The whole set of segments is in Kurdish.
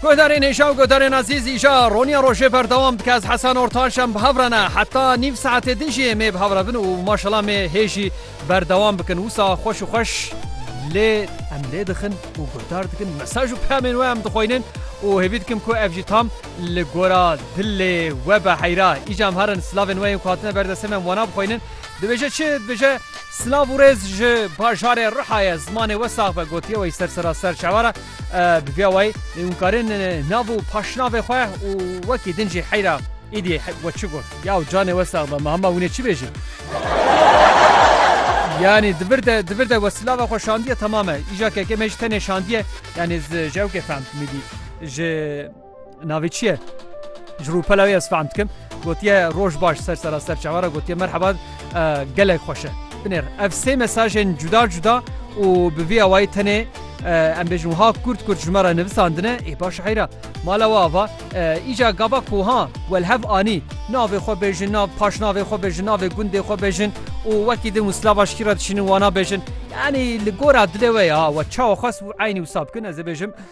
Guhdarên hêja û guhdarên ezîz îja roniya rojê berdewam dike ez Hesan Ortaş em bi hev re ne heta nîv saetê din jî êmê bi hev re bin û maşela mê hê jî berdewam bikin wisa xweş û xweş lê em lê dixin û guhdar dikin mesaj û peyamên we em dixweynin û hêvî dikim ku ev jî tam li gora dilê we be heyra îca em herin silavên we yên ku hatine berdestê me em wana bixweynin dibêje çi dibêje Silav û rêz ji bajarê Rihayê zimanê we sax be gotiye wey ser sera ser çewara bi vêya wey hûn karên nav û paşnavê xwe û wekî din jî heyra îdî we çi got yaw canê we sax be me hema hûnê çi bêjin yanî di vir de di vir de we silava xwe şandiye temam e îja keke me jî tenê şandiye yanî ji ewkê fehm dimîdî ji Navê çi ye? Ji rûpela wê ez fehm dikim. Gotiye roj baş ser sera ser çawa re gotiye merheba gelek xweş e. Binêr ev sê mesajên cuda cuda û bi vî awayî tenê em bêjin wiha kurt kurt ji me re nivisandine ê baş heyra mala we ava îca gava ku ha we li hev anî navê xwe bêjin nav paş navê xwe bêjin navê gundê xwe bêjin û wekî din û silava ji kî re dişînin wana bêjin yanî li gora dilê we ya we çawa xwest û eynî wisa bikin ez ê bêjim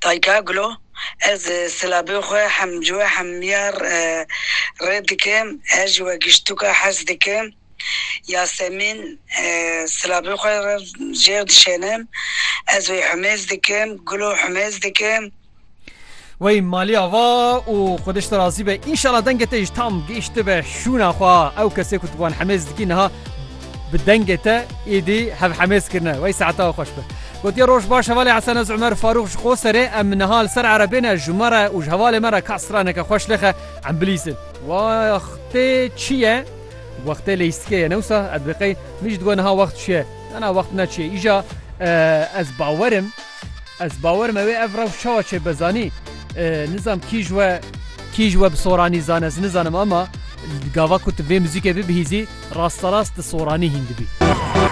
Taykaglu, Ez silabê xwe hem ji we hem ya rê dikim, her ji we giştûka hez dikim. Yasemîn, Silabê xwe rev jêr dişênim, ez wê humêz dikim, gulo humêz dikim. Wey malê ava û xwedişt te razî be. Înşala dengê te jî tam gihîştibe şûna xwe. Ew kesê ku tu bi wan hemêz dikî niha Bi dengê te êdî hevhemêz kirine. Wey saeta xweş be. Gotiye roj baş hevalê Hesen ez Umer Farûq ji xwe serê em niha li ser erebê ne ji me re û ji hevalê me re ka straneke xweş lixe em bilîzin. Wextê çi ye? Wextê leysikê ye ne wisa edbiqey min jî digot niha wext çi ye? Nana wext ne çi ye îja ez bawerim. Ez bawer me wê ev rew çawa çê be zanî nizam kî ji we kî ji we bi soranî zan ez nizanim ema gava ku tu vê muzîkê bibihîzî rasterast di soranî hîn dibî.